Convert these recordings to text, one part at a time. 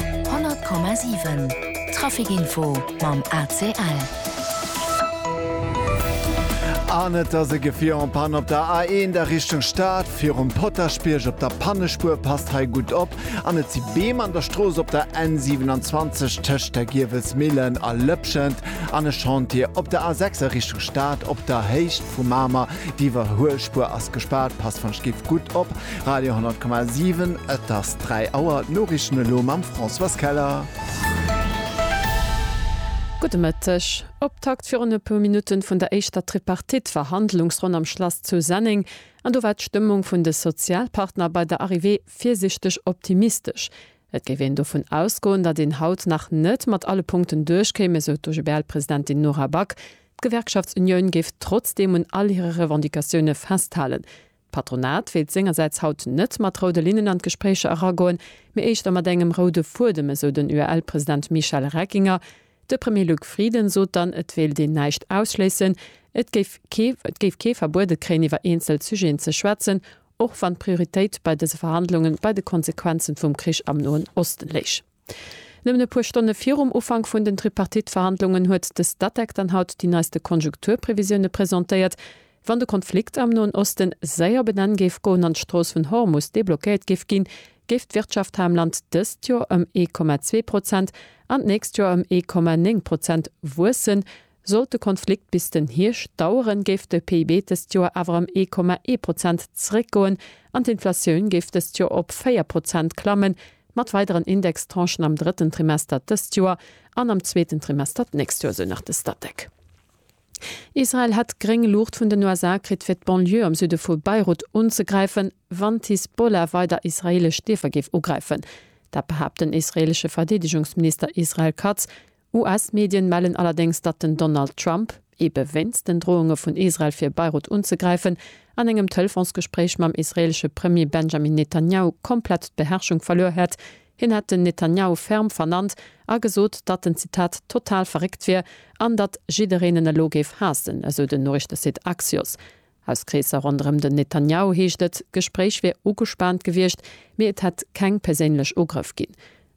100,7 Traficinfo mam ACL. An et ass e Gefier en panne op der A1 a Richtung Stad. Virum Potaschbierg op der Pannespuer. Passt hei gutt op. An et si Beem an der Strooss op der N27 tëscht der Giewelsmillen a Lëpschent. An e Chantier op der A6 a Richtung Stad op der Héicht vu Mamer. D'Iwwerhuelspuer ass gespaart. Passt wann et giff gutt op. Radio 10,7 Et ass 3 Auer, d'Noriichten elo mam Françoise Keller. Gudde Mëtteg. Optakt virun e puer Minutte vun der éischter Tripartite Verhandlungsronn am Schlass zu Senneng. An do war d'Stëmmung vun de Sozialpartner bei der Arrivée virsiichteg optimistesch. Et géif een dovun ausgoen, datt een haut nach net mat alle Punkten duerchkéim, esou d'OGBL-Presidentin Nora Back. D'Gewerkschaftsunioun géif trotzdeem un all hire Revendicatioune festhalen. D'Patronat wéilt sengersäits haut net mat roude Linnen an d'Gespréicher eragoen, mee éischter mat engem roude Fuedem, esou den UEL-President Michel Reckinger. De Premier Luc Frieden sot dann, et wéilt een näischt ausschléissen, et géif kee et géif kee verbuede kréien iwwer eenzel Sujeten ze schwätzen, och wann d'Prioritéit bei dëse Verhandlunge bei de Konsequenze vum Krich am Noen Osten léich. Nëmmen e puer Stonne virum Ufank vun den Tripartite-Verhandlungen huet de Statec dann haut déi neiste Konjunkturprevisioune presentéiert. Wann de Konflikt am Noen Oste séier op en Enn géif goen an d'Strooss vun Hormus deblockéiert géif ginn, géif d'Wirtschaft hei am Land dëst Joer ëm ee Komma zwee Prozent an d'nächst Joer ëm ee Komma néng Prozent wuessen, Sollt de Konflikt bis den Hierscht daueren, géif de PIB dëst Joer awer ëm ee Komma ee Prozent zeréckgoen an d'Inflatioun géif dëst Joer op véier Prozent klammen, mat weideren Indextranchen am drëtten Trimester dëst Joer an am zweeten Trimester d'nächst Joer, esou nach de Statec. Israel hätt gréng Luucht vun den USA kritt, fir d'Banlieue am Süde vu Beirut unzegräifen, wann d'Hisbollah weider israeelesch Dierfer géif ugräifen. Dat behaapt den israeelesche Verdeedegungsminister Israel Katz US-Medien mellen allerdéngs, datt den Donald Trump, ebe wéinst den Drohunge vun Israel fir Beirut unzegräifen, an engem Telefonsgespréich mam israeelesche Premier Benjamin Netanjahu komplett d'Beherrschung verluer hätt. Hien hätt den Netanjahu ferm vernannt a gesot, datt en, Zitat, total verréckt wier an datt jiddereen en elo géif haassen, esou den Noriichtesite Axios. Aus Kreesser ronderëm den Netanjahu heescht et, d'Gespréich wier ugespaant gewiescht, mee et hätt keng perséinlech Ugrëff ginn.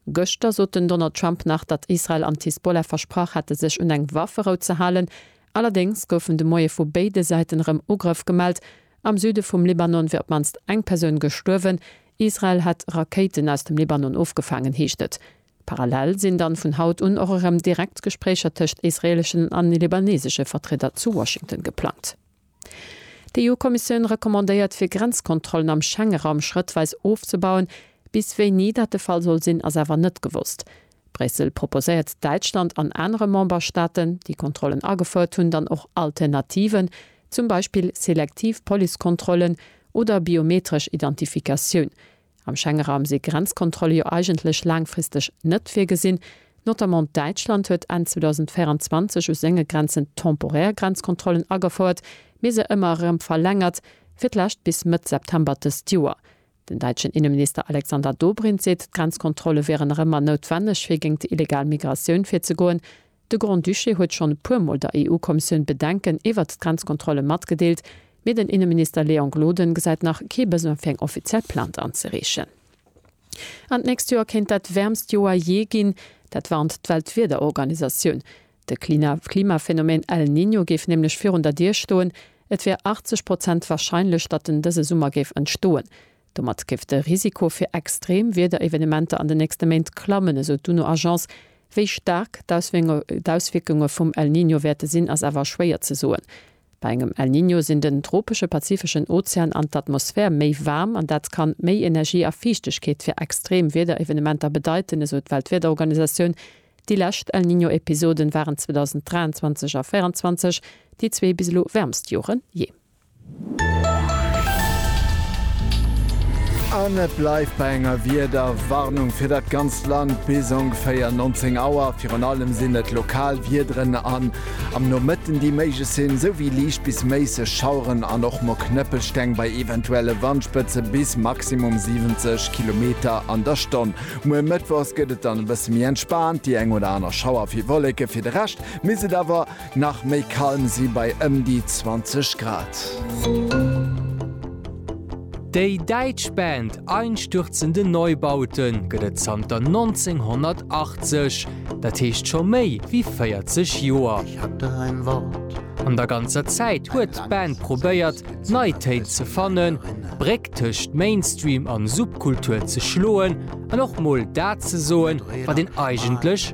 Gëschter sot den Donald Trump nach, datt Israel an d'Hisbollah versprach hätte sech un eng Wafferou ze halen. Allerdéngs goufen de Moie vu béide Säiten erëm Ugrëff gemellt. Am Süde vum Libanon wier op d'mannst eng Persoun gestuerwen. Israel hätt Rakéiten aus dem Libanon ofgefaangen, heescht et. Parallel sinn dann vun haut un och erëm direkt Gespréicher tëscht israeleschen an libanesesche Vertrieder zu Washington geplangt. D'EU-Kommissioun recommandéiert fir Grenzkontrollen am Schengeraum schrëttweis ofzebauen. Bis wéini dat de Fall soll sinn, ass awer net gewosst. Bréissel proposéiert Däitschland an anere Memberstaaten, déi Kontrollen agefouert hunn, dann och Alternativen, zum Beispill selektiv Policekontrollen oder biometresch Identifikatioun, Am Schengenraum si Grenzkontrolle jo eigentlech laangfristeg net virgesinn. Notamment Däitschland huet Enn 2024 u senge Grenzen temporär Grenzkontrollen agefouert, mee se ëmmer erëm verlängert, fir d'lescht bis Mëtt September dëst Joer. Den däitschen Inneminister Alexander Dobrindt seet, d'Grenzkontrolle wieren erëm mar noutwenneg, fir géint illegal Migratioun virzegoen. De Grand-Duché huet schonn e puer Mol der EU-Kommissioun Bedenken iwwert d'Grenzkontrolle matgedeelt, mee den Inneminister Léon Gloden gesäit nach kee Besoin fir eng offiziell Plainte anzereechen. An d'nächst Joer kéint dat wäermst Joer jee ginn. Dat warnt d'Weltwiederorganisatioun. De Klimaphenomeen El Niño géif nämlech virun der Dier stoen. Et wär 80 Prozent warscheinlech, datt en dëse Summer géif entstoen. Domat géif de Risiko fir extrem Wiederevenementer an den nächste Méint klammen, esou d'UNO-Agence. Wéi staark d'Auswierkunge vum El Niño wäerte sinn, ass awer schwéier ze soen. Bei engem El Niño sinn den tropesche pazifeschen Ozean an d'Atmosphär méi waarm an dat kann méi Energie a Fiichtegkeet fir extrem Wiederevenementer bedeiten, esou d'Weltwiederorganisatioun. Déi lescht El Niño-Episoden waren 2023 a 2024 déi zwee bis elo wäermst Joren jee. An et bleift bei enger Wiederwarnung fir dat ganzt Land bis ongeféier 19 Auer. Virun allem sinn et lokal Wiederen an am Nomëtten, déi méiglech sinn, souwéi liicht bis méisseg Schaueren an och mol Knëppelsteng bei eventuelle Wandspëtze bis maximum 70 Kilometer an der Stonn. Muer mëttwochs gëtt et dann e bësse méi entspaant, déi eng oder aner Schauer fir Wolleke. Fir de Rescht misst et awer. Nach méi kalm si bei ëm déi 20 Grad. Déi däitsch Band Einstürzende Neubaute gëtt et zanter 1980, dat heescht scho méi wéi 40 Joer. An der ganzer Zäit huet d'Band probéiert, nei Téin ze fannen, d'Bréck tëscht Mainstream an Subkultur ze schloen an och mol dat ze soen, wat een eigentlech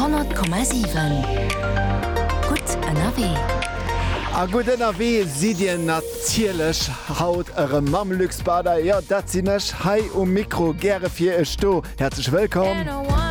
Honnert Komma siwen, gutt ënnerwee! A gutt ënnerwee sidd Dir natierlech haut erëm mam Luxpader, jo dat sinn ech hei um Mikro, gäre fir Iech do. Häerzlech wëllkomm!